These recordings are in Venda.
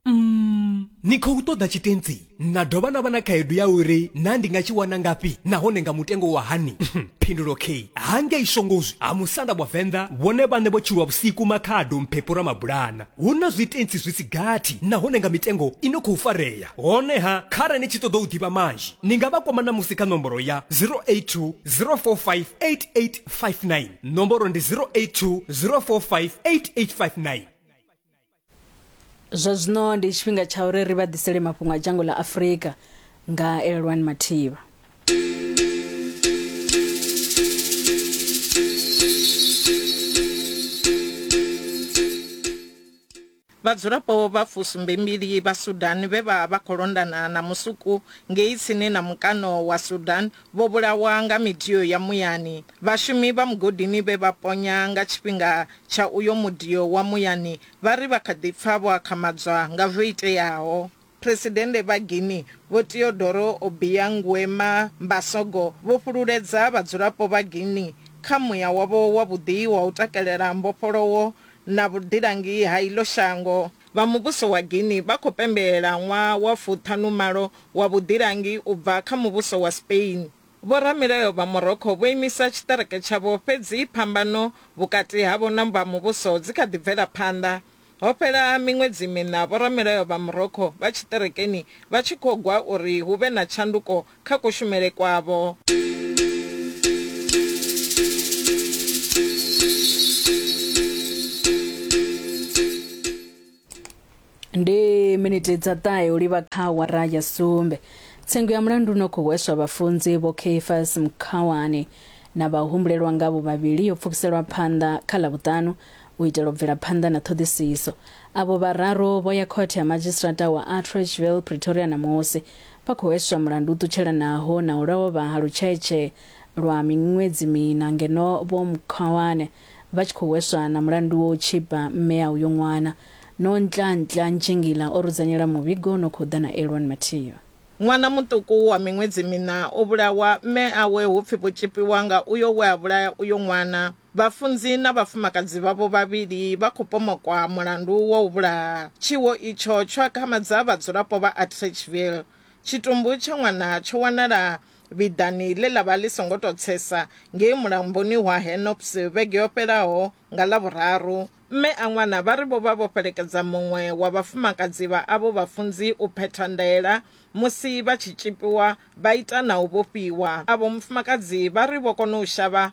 Mm, ni khou ṱoḓa tshitentsi na dovha na vha na khaedu ya uri na ndi nga tshi wana ngafhi nahone nga mutengo wa hani phindulo k hangei shongozwi ha musanda wa venḓa vhone vhane vho tshilwa vhusiku makhado mphepho ra mabulana hu na zwitentsi zwi si gathi nahone nga mitengo i no khou farea honeha khare ni tshi ṱoḓa u ḓivha manzhi ni nga vha kwama na musi kha nomboro ya 082 045 8859 nomboro ndi 082 045 8859 zwa zwino ndi tshifhinga tsha uri ri vha ḓisele mafhungo a dzhango ḽa afurika nga elelwani mathivha Vhadzulapo vha fusumbembili vha Sudan vhe vha vha khou londana na musuku ngei tsini na mukano wa Sudan Vho vhulawa nga midio ya muyani. Vhashumi vha mugodini vhe vha ponya nga tshifhinga tsha uyo mudio wa muyani vha ri vha kha ḓi pfa vho akhamadzwa nga zwo iteaho. Phresidennde vha Guinea Vho Teodoro Obiang Nguema Mbasogo vho fhululedza vhadzulapo vha Guinea kha muya wavho wavhuḓi wa u takalela mbofholowo na vhuḓilangi ha iḽo shango. Vha muvhuso wa Guinea vha khou pembelela ṅwaha wa fuṱhanumalo wa vhuḓilangi u bva kha muvhuso wa Spain. Vhoramilayo vha Morocco vho imisa tshiṱereke tshavho fhedzi phambano vhukati havho na vha muvhuso dzi kha ḓi bvela phanḓa. Ho fhela miṅwedzi miṋa vhoramilayo vha Morocco vha tshiṱerekeni vha tshi khou gwa uri hu vhe na tshanduko kha kushumele kwavho. ndi miniti dza ṱahe u livha kha wara ya sumbe tsengo ya mulandu no khou hweswa vhafunzi vho kfas mkhawani na vhahumbulelwa ngavho vhavhili yo pfukiselwa phanḓa kha ḽa vhuṱanu u itela u bvela phanḓa na ṱhoḓisiso avho vhararu vho ya khothe ya madzhisitirata wa attrachville pretoria na musi Vha khou hweswa mulandu u ṱutshelanaho na u lovha ha Lutshaetshe lwa miṅwedzi miṋa ngeno Vho Mkhwawane vha tshi khou hweswa na mulandu wa u tshipa mme a uyo ṅwana. Nontlaantla Ntshingila o rudzanyela muvhigo u no khou ḓa na Elwon Mathiyo. Ṅwana muṱuku wa miṅwedzi miṋa o vhulawa, mme awe hu pfi vho tshipiwa nga uyo we a vhulaya uyo ṅwana. Vhafunzi na vhafumakadzi vhavho vhavhili vha khou pomokwa mulandu wa u vhulaha. Tshiwo itsho tsho akhamadza vhadzulapo vha Atteridgeville. Tshitumbu tsha ṅwana tsho wanala vhiḓani ḽe ḽa vha ḽi songo tou tsesa ngei mulamboni wa Hennop's vhege yo fhelaho nga Ḽavhuraru. Mme a ṅwana vha ri vho vha vho fhelekedza muṅwe wa vhafumakadzi vha avho vhafunzi u phetha ndaela musi vha tshi tzhipiwa vha ita na u vhofhiwa. Avho mufumakadzi vha ri vho kona u shavha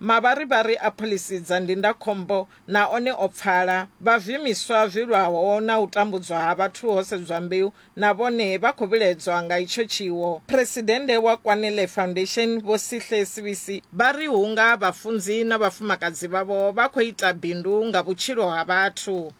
Mavharivhari a phoḽisi dza ndindakhombo na one o pfala. Vhazwiimiswa zwi lwaho na u tambudzwa ha vhathu ho sedzwa mbeu na vhone vha khou vhiledzwa nga itsho tshiwo. Phresidennde wa Kwanele Foundation, Vho Sihle Sibisi, vha ri hunga vhafunzi na vhafumakadzi vhavho vha khou ita bindu nga vhutshilo ha vhathu.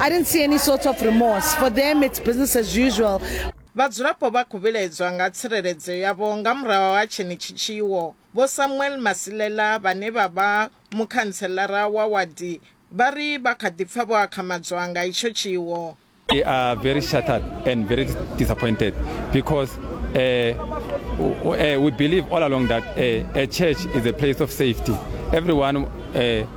I didn't see any sort of remorse. For them, it's business as usual. Vhadzulapo vha khou vhilaedzwa nga tsireledzo yavho nga murahu ha tshenetshi tshiwo. Vho Samuel Masilela vhane vha vha mukhantselara wa wadi vha ri vha kha ḓi pfa vho akhamadzwa nga itsho tshiwo. We are very shattered and very disappointed because uh, uh, we believe all along that uh, a church is a place of safety. Everyone uh,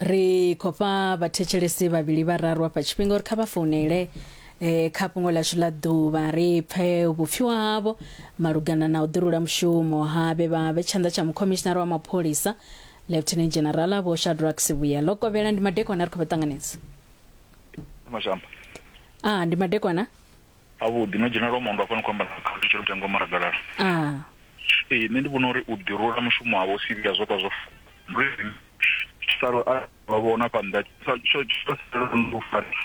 ri khou fha vhathetshelesi vhavhili vhararu afha tshifhinga uri kha vha founele eh, kha fhungo lashu ḽa ḓuvha ri pfe vhupfiwa havho malugana na u ḓirula mushumo ha vhe vha vhe tshanḓa tsha mukhomishinara wa mapholisa lieutenant general vho shadrack sivhuya ḽo kovhela ndi madekwana ri khou vha ṱanganedza mashamba a ndi madekwana Ha vhuḓi no dzhena lwa mondo hafha ni kho amba na khathutshelo mutengo wa maragalala ee nṋe ndi vhona uri u ḓi rula mushumo wavho u sivhiya zwo ka zwo salo a vha vhona hafha nnḓa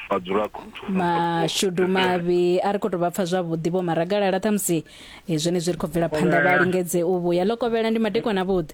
vhadzulapo mashudu mavhi a ri khou tou vha pfa zwavhuḓi vho maragalala ṱhamusi eh, zwenezwi ri khou bvela phanḓa vha lingedze u vhuya ḽo kovhela ndi madekwana vhuḓi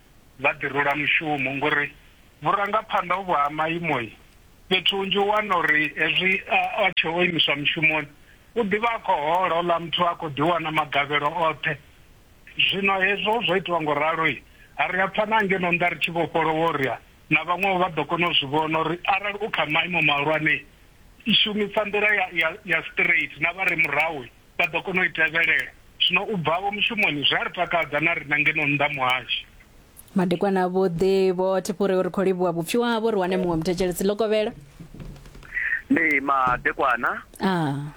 vha ḓi rula mushumo ngori vhurangaphanḓa uvhu ha maimo fhethu hunzhi u wana uri hezwi a tshe o imiswa mushumoni u ḓivha a khou hola ola muthu a khou ḓi wana magavhelo oṱhe zwino hezwo zwo itiwa ngo ralo ha ri a pfha na ngeno nda ri tshi vhofholowa uri na vhaṅwe vha ḓo kona u zwi vhona uri arali u kha maimo mahulwane i shumisa nḓila ya ya straight na vha re murahu vha ḓo kona u i tevhelela. Zwino u bvavho mushumoni zwi a ri takadza na riṋe ngeno nnḓa muhasho. Madekwana avhuḓi vho Thipuri ri khou livhuwa vhupfhiwa havho ri wane muṅwe muthetshelesi ḽo kovhela. Ndi madekwana. Ah.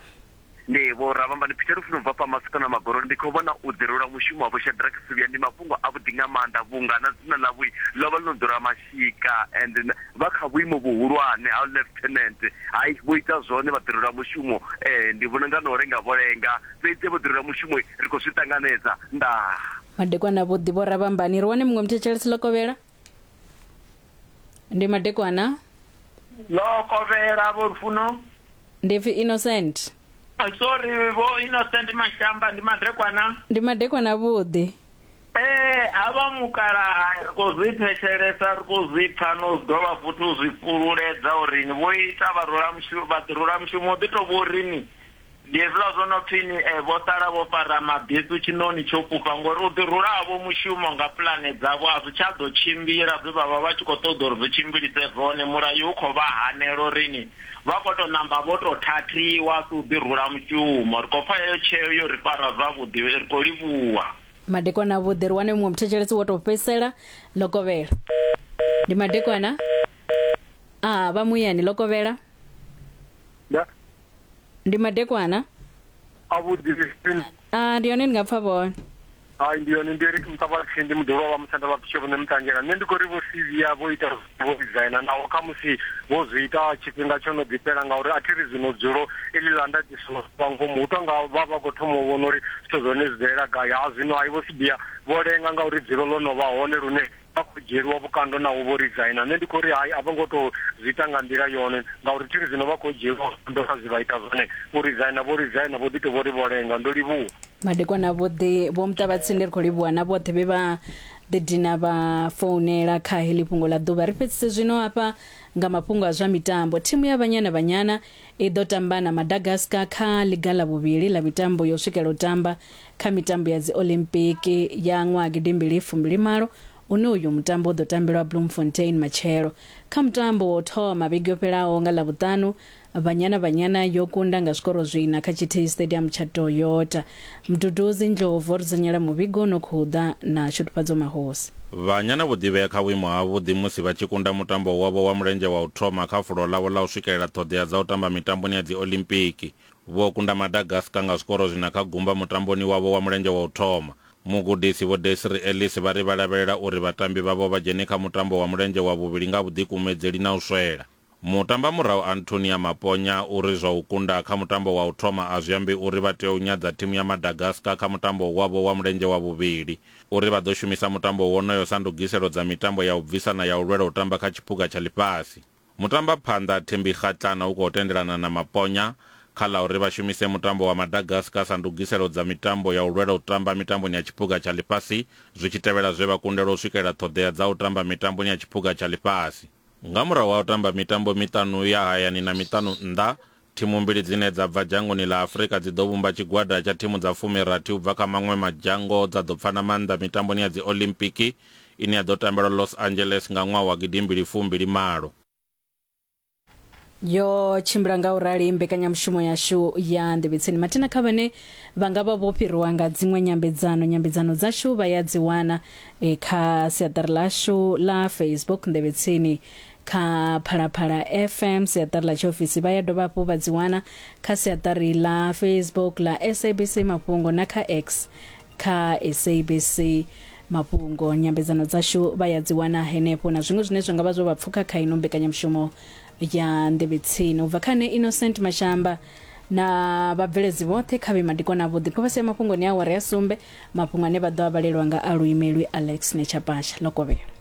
Ndi vho Ravhambani Peter Lufuno bva fha Masiko na Magoroni ndi khou vhona u ḓirula mushumo wa vho Shadrack Suvhia ndi mafhungo avhuḓi nga maanḓa vhunga na dzina ḽavho ḽo vha ḽo ḓura Tshika and vha kha vhuimo vhuhulwane ha Lieutenant. Hai vho ita zwone vhaḓirelwa mushumo ndi vhona nga na u lenga vho lenga fhedzi vhaḓirelwa mushumo ri khou zwi ṱanganedza. Ndaa. Madekwana avhuḓi vho Rabambani. Ri wane muṅwe muthetshelesi Lokovhela. Ndi madekwana. Lokovhela vho Lufuno. Ndi pfi Innocent. Sorry vho Innocent Mashamba ndi madekwana. Ndi madekwana avhuḓi. Ee, havha mukalaha ri khou zwi thetshelesa, ri khou zwi pfa na u dovha futhi u zwi fhululedza uri ni vho ita vharulamushu, vhaḓirulamushumo ḓi tou vho ri ni. Ndi hezwiḽa zwo no pfi ni e, vho sala vho fara mabesu tshiṋoni tsho fhufha, ngori u ḓi rula havho mushumo nga pulane dzavho a zwi tsha ḓo tshimbila zwe vha vha vha tshi khou ṱoḓa uri zwi tshimbilise zwone. Mulayo u khou vha hanela uri ni vha khou tou ṋamba vho tou thathiwa a si u ḓi rula mushumo. Ri khou pfa heyo tsheo yo ri fara zwavhuḓi. Ri khou livhuwa. madekwana avhuḓi ri wane muṅwe muthetshelesi wo tou fhedzisela ḽo kovhela ndi madekwana a vha muyani ḽo kovhela Ya. ndi madekwana a vhuḓi a ndi hone ndi nga pfa vhone hai ndi yone ndi eric muṱavhathi ndi muḓolo wa musanda vha pitsho vhone mutangela nṋe ndi khou ri vho cv ya vho ita Vho vhidzela, naho khamusi vho zwi ita tshifhinga tsho no ḓi fhela, ngauri a thi ri zwino dzulo iḽi ḽa ndaṱiso ḽo vha ngomu. Hu tou nga vha vha khou thoma u vhona uri zwithu zwa hone zwi bvelela gai. Ha zwino, hai Vho Sibiya, vho lenga ngauri dzulo ḽo no vha hone lune vha khou dzhieliwa vhukando naho vho rizaina. Nṋe ndi khou ri hai, a vho ngo tou zwi ita nga nḓila yone, ngauri thi ri zwino vha khou dzhieliwa vhukando kha zwe vha ita zwone. U rizaina vho rizaina, vho ḓi tou vho ri vho lenga. Ndo livhuwa. Madekwana vhoṱhe, Vho Muṱavhatsindi, ri khou livhuwa na vhoṱhe vhe vha Ḓi dina vha founela kha heḽi fhungo ḽa ḓuvha. Ri fhedzise zwino hafha nga mafhungo a zwa mitambo. Thimu ya Banyana Banyana i ḓo tamba na Madagascar kha ḽiga ḽa vhuvhili ḽa mitambo yo swikela u tamba kha mitambo ya dzi Olympic ya ṅwaha gidimbili fumbili malo une uyu mutambo u ḓo tambelwa Bloemfontein matshelo. Kha mutambo wa u thoma vhege yo fhelaho nga ḽavhuṱanu, Banyana Banyana yo kunda nga zwikoro zwiina kha tshithihi Stadium tsha Toyota. Mduduzi Ndlovu o ri dzunyela muvhigo u no khou ḓa na Shudufhadzo Mahosi. Banyana vho ḓivhea kha vhuimo havhuḓi musi vha tshi kunda mutambo wavho wa mulenzhe wa u thoma kha fulo ḽavho ḽa u swikelela ṱhoḓea dza u tamba mitamboni ya Dziolimpiki. Vho kunda Madagascar nga zwikoro zwiina kha gumba mutamboni wavho wa mulenzhe wa u thoma. Mugudisi Vho Desiree Ellis vha ri vha lavhelela uri vhatambi vhavho vha dzhene kha mutambo wa mulenzhe wa vhuvhili nga vhuḓikumedzeli na u swela. Mutambamurahu Antonia Maponya u ri zwa u kunda kha mutambo wa u thoma a zwi ambi uri vha tea u nyadza thimu ya Madagascar kha mutambo wavho wa mulenzhe wa vhuvhili. U ri vha ḓo shumisa mutambo wonoyo sa ndugiselo dza mitambo ya u bvisa na ya u lwela u tamba kha tshiphuga tsha ḽifhasi. Mutambaphanḓa Thembi Kgatlana u khou tendelana na Maponya kha ḽa uri vha shumise mutambo wa Madagascar sa ndugiselo dza mitambo ya u lwela u tamba mitamboni ya tshiphuga tsha ḽifhasi zwi tshi tevhela zwe vha kundelwa u swikelela ṱhoḓea dza u tamba mitamboni ya tshiphuga tsha ḽifhasi. Nga murahu ha u tamba mitambo miṱanu ya hayani na miṱanu nnḓa, thimu mbili dzine dza bva dzhangoni ḽa Afrika dzi ḓo vhumba tshigwada tsha thimu dza fumi-rathi u bva kha maṅwe madzhango dza ḓo pfana maanḓa mitamboni ya Dziolimpiki ine ya ḓo tambelwa Los Angeles nga ṅwaha wa gidi mbili fu mbili malo. yo tshimbila nga u rali mbekanyamushumo yashu ya nḓevhetseni mathina kha vhane vha nga vha vho fhiriwa nga dziṅwe nyambedzano nyambedzano dzashu vha ya dzi wana e, kha siaṱari lashu la facebook nḓevhetseni kha phalaphala fm siaṱari ḽa tshiofisi vha ya dovha hafhu vha dzi wana kha siaṱari ḽa facebook ḽa sabc mafhungo na kha x kha sabc mafhungo nyambedzano dzashu vha ya dzi wana henefho na zwiṅwe zwine zwa nga vha zwo vha pfuka kha ino mbekanyamushumo ya nḓevhetsini u bva kha ne innocent mashamba na vhabveledzi vhoṱhe kha vhe madikwana avhuḓi kho vha sia mafhungoni a awara ya sumbe mafhungo ane vha ḓo a vhalelwa nga a luimelwi alex netsha pasha ḽo kovhela